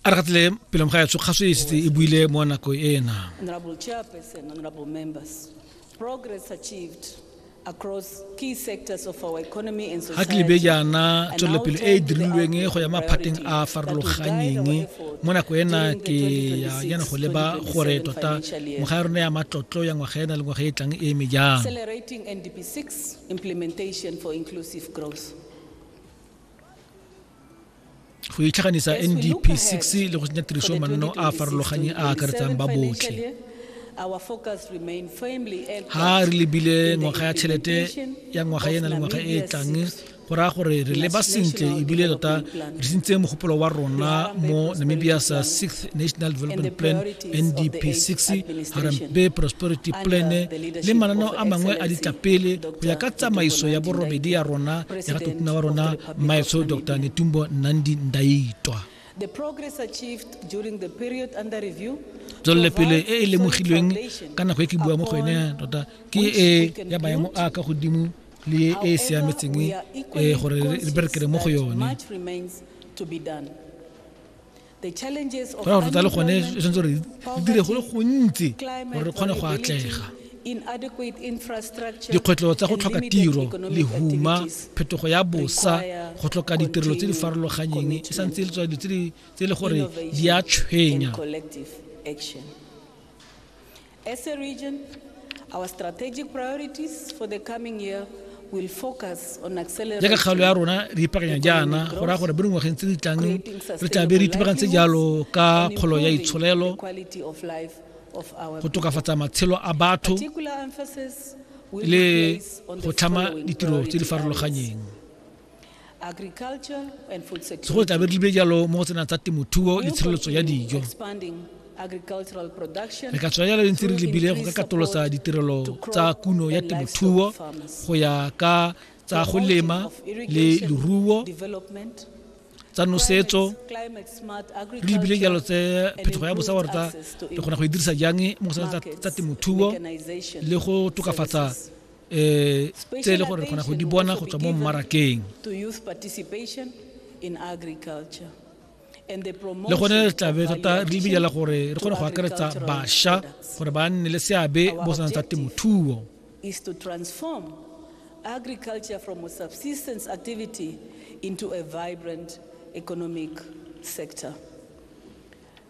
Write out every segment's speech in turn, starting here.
a re gatlile pelong ga yatso kgaso e setse e buile mo nako ena progress achieved across key sectors of our economy and society. Haklibe jaana tswelelopele e e dirilweng go ya maphateng a farologanyeng mo nako ena ke ya yana go leba gore tota ngwaga ya rona ya matlotlo ya ngwaga ena le ngwaga e tlang e eme jang. Accelerating NDP6 implementation for inclusive growth. go itlhaganisa ndp 6 le go tsenya tiriso manno a a farologanye a akaretsang ba botlhe ha re lebile ngwaga ya tšhelete ya ngwaga ena le ngwaga e e tlang go raya gore re leba sentle ebile tota re sentse mogopolo wa rona mo namibia's sixth national development plan ndp 6 harambe prosperity plan le mananeo a mangwe a ditlapele go ya ka tsamaiso ya borobedi ya rona ya ratotona wa rona mmaetsho dr netumbo nandi ndaitwa tswelelopele e e lemogilweng ka nako e ke bua mo go ene tota ke e ya maemo a ka godimo le e e siametseng e gore re berekele mo go yone ra gore tsa le gone e tshwanetse gore di dire go le gontsi gore re kgone go atlega dikgwetlho tsa go tlhoka tiro lehuma phetogo ya bosa go tlhoka ditirelo tse di farologanyeng e santse e le tswa dilo tse e le gore di a tshwenya As a region, our strategic priorities for the coming year will focus on accelerating jaaka kgaolo ya rona re ipakanya jaana go raya gore mo dingwageng tse di tlang re tla be re itebagantse jalo ka kgolo ya itsholelo go tokafatsa matshelo a batho le go tlhama ditiro tse di farologanyeng segolo tlabe di be jalo mo go tsena tsa temothuo le tshireletso ya dijo re ka tswa jalo ntse re lebile go ka katolosa ditirelo tsa kuno ya temothuo go ya ka tsa go lema le leruo tsa nosetso re lebile jalo tse phetogo ya bosa gore tsa re kgona go e dirisa jang mo go tsa temothuo le go tokafatsa eh tse e le gore re kgona go di bona go tswa mo mmarakeng le gone re tlabe tota re lebidela gore re kgone go akaretsa bašwa gore ba nne le seabe mo sanang tsa temothuo agriculture from a subsistence activity into a vibrant economic sector.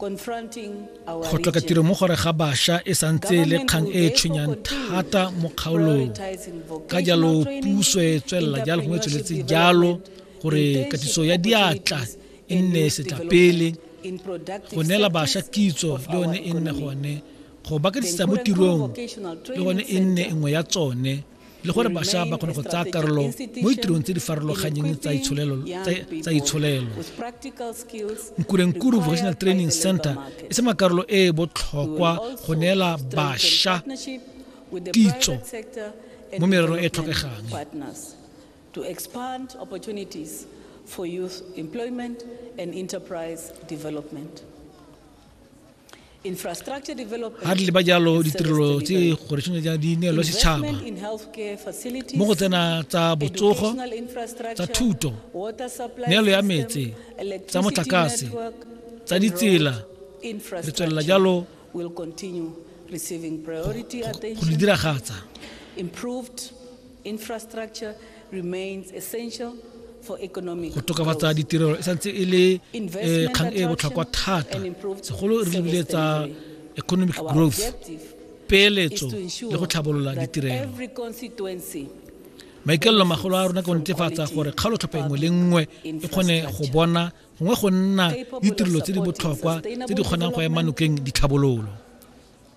Go tlhoka tiro mo gore ga basha e santse e le kgang e e tshwenyang thata mo kgaolong. Ka jalo puso e tswelela jalo gongwe e tsweletse jalo gore katiso ya diatla e nne setlapele go neela basha kitso le one e nne gone go ba kadisetsa mo tirong le gone e nne nngwe ya tsone le gore bašwa ba kgone go tsaya karolo mo ditirong tse di farologanyeng tsa itsholelo nkurenkuru vocational training center e se makarolo e e botlhokwa go neela bašwa kitso mo mererong e tlhokegang to expand opportunities for youth employment and enterprise development. ga tle ba jalo ditirelo tse gore tshwanetse ja di neelwe setšhaba mo go tsena tsa botsogo tsa thuto neelo ya metse tsa motlakase tsa ditsela re tswelela jalo go di diragatsa Go tokafatsa ditirelo e santse e le eh, kgang e e botlhokwa thata segolo re lebile tsa economic growth peeletso le go tlhabolola ditirelo maikaelelo magolo a rona ke go netefatsa gore kgaolo tlhopha engwe le nngwe e kgone go bona gongwe go nna ditirelo tse di botlhokwa tse di kgonang go ema nokeng ditlhabololo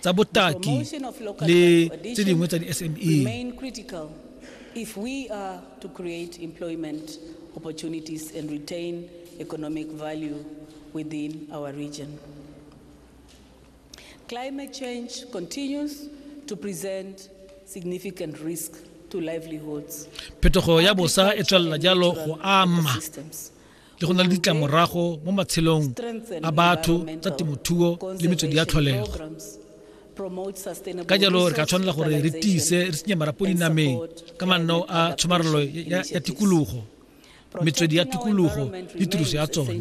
tsa botaki le tse dingwe tsa di-sme if we are to create employment opportunities and retain economic value within our region. Climate change continues to present significant risk to livelihoods. Phetogo ya bosa e tswelela jalo go ama le go na le ditlamorago mo matshelong a batho tsa temothuo le metswedi ya tlholego ka jalo re ka tshwanela gore re tiise re senye marapo dinameng ka manno a tshomarelo ya tikologo metswedi ya tikologo le tiriso ya tsone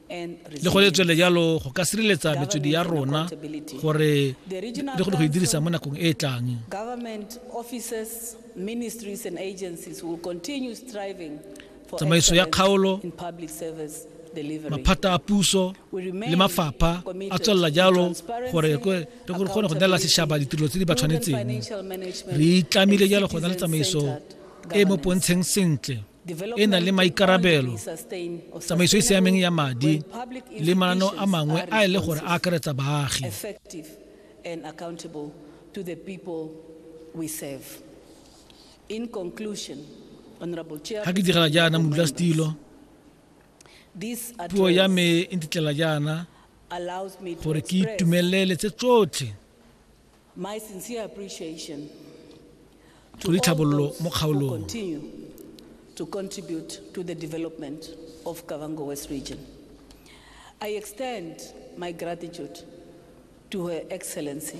le go le tswele jalo go ka sireletsa metswedi ya rona gore le go e dirisa mo nakong e e tlang tsamaiso ya kgaolo maphata a puso le mafapha a tswelela jalo gore re kgone go neela setšhaba ditirelo tse di ba tshwanetseng re itlamile jalo go na le tsamaiso e mo pontsheng sentle e na le maikarabelo tsamaiso e siameng ya madi le mananeo a mangwe a e le gore a akaretsa baagi ga ke direla jaana modula setilo puo ya me e ntitlela jaana gore ke itumelele tse tsotlhe My sincere appreciation to Tshodi all Tlhabololo those mo who kgaolong. continue to contribute to the development of Kavango West Region. I extend my gratitude to Her Excellency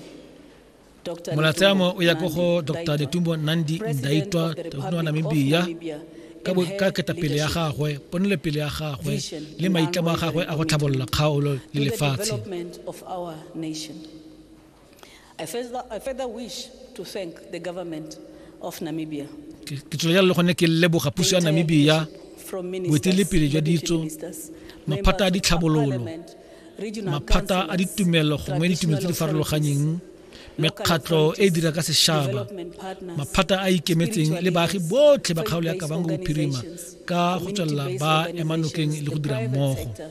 Dr. Molatsamo o ya ko go Netumbo Dr. Ndaitwah, Netumbo Nandi President Ndaitwah, of the President wa Republic of Namibia, Namibia, ka bo- and her ka ketapele ya leadership gagwe ponelopele ya gagwe vision le and maitlamo a gagwe a go unwavering tlhabolola kgaolo le to the lefatshe development of our nation. I further, I further wish to thank the government of Namibia. Ke ke tswelela le gone ke leboga puso ya Namibia From boeteledipele jwa deputy ditso, ministers, maphata a members of ditlhabololo, parliament, regional maphata a councillors, ditumelo gongwe ditumelo tse di traditional farologaneng authorities, mekgatlho local e e dira ka authorities, sešaba development partners, maphata a ikemetseng le baagi spiritual botlhe ba leaders, kgaolo ya faith-based kabango bophirima organizations, ka go tswelela community ba organizations, ema nokeng le go dira the private mmogo sector,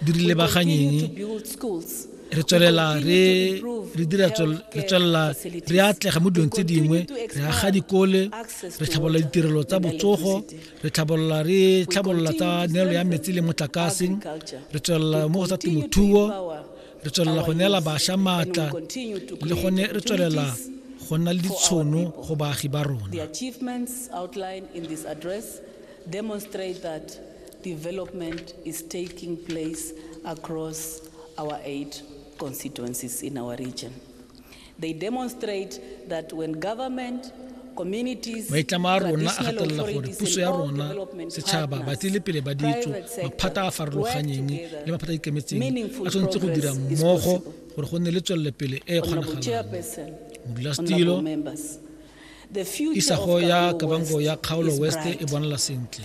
di re lebaganyeng re tswelela re re dira re tswelela re atlega mo dilong tse dingwe re aga dikole re tlhabolola ditirelo tsa botsogo re tlhabolola re tlhabolola tsa neelo ya metsi le motlakase re tswelela mo go tsa temothuo re tswelela go neela bašwa maatla le gone re tswelela go nna le ditshono go baagi ba rona Development is taking place across our eight constituencies in our region. They demonstrate that when government maitlamo a rona a gatelela gore puso ya rona setšhaba batlile pele ba ditso maphata a farologanyeng le maphata a ikemetseng a tshwanetse go dira mmogo gore go nne le tswelelopele e e kgonagalang modulasetilo isago ya kabango ya kgaolo west e bonala sentle